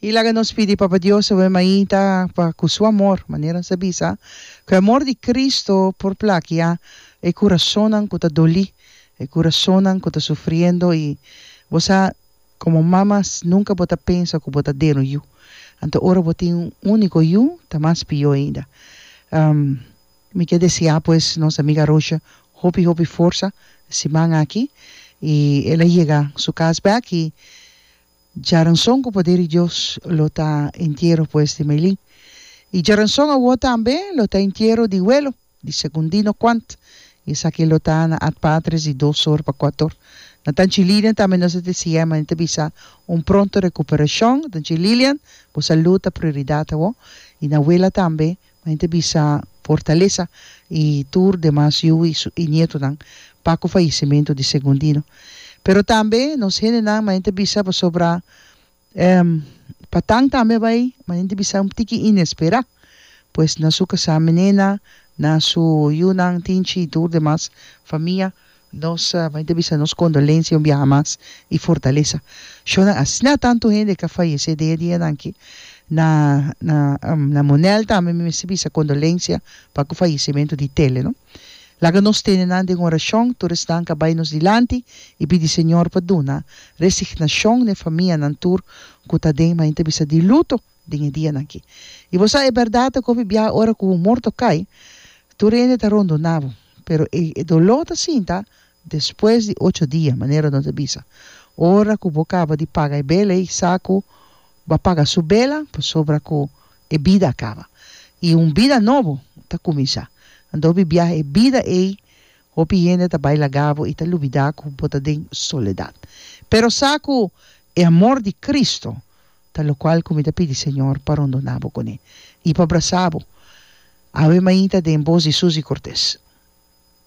Y laga nos pidi Papa Dios obe mainta pa cu su amor, manera nos a bisa, cu e amor di Cristo por plakia e curasonan cu ta doli, e curasonan cu ta sufriendo y bo sa como mama nunca bo ta pensa cu bo ta den un yu, anto ora bo tin un unico yu ta mas pio ainda. Mi ke deseá pues nos amiga Rosha hopi hopi forsa siman aki i el a yega su kas bèk i djaranson ku poder di Dios lo ta entiero pues di Meilin i djaranson awor tambe lo ta entiero di welo di Segundino Quant i esaki lo ta na at patres di dos or pa kuat or na tanchi Lilian tambe nos a deseá mane ta bisa un pronto recuperashon tanchi Lilian bo salud ta prioridad awor i na wela tambe Main ta bisa Fortaleza y tur demas yu y su nietonan pa cu fallecimento di Segundino. Pero tambe nos hendenan main ta bisa pasobra Patang tambe a bay, main ta bisa un tiki inespera, pues na su casaminena, na su yunan, tinchi y tur demas famia Nos bai ta bisa nos kondolensia un biaha mas i fortalesa shona. Asina tantu hende ke a fayesé den e dianan aki. Na na na Monel tambe mi mester bisa kondolensia pa ku fayesementu di Tele no. Laga nos tene nan den orashon, tur esnan ke a bai nos dilanti i pidi Señor pa duna resignashon n'e famianan tur ku ta den bai ta bisa di luto. den e dianan ki. I bo sa e bèrdat ta kobi biaha ora ku un morto kai, tur hende ta rondona bo, pero e doló ta sinta despues di ocho dia, manera nos a bisa. Ora ku bo kaba di paga e bela ei sa ku bo a paga su bela pasobra ku e bida a kaba i un bida nobo ta kuminsá. Anda hopi biaha e bida ei hopi hende ta bai laga bo i ta lubidá ku bo ta den soledat. Pero sa ku e amor di Kristu. Ta locual cu mi ta pidi Señor pa rondoná bo cuné i pa brasá bo. Awe mainta den bos di Suzy Cortez.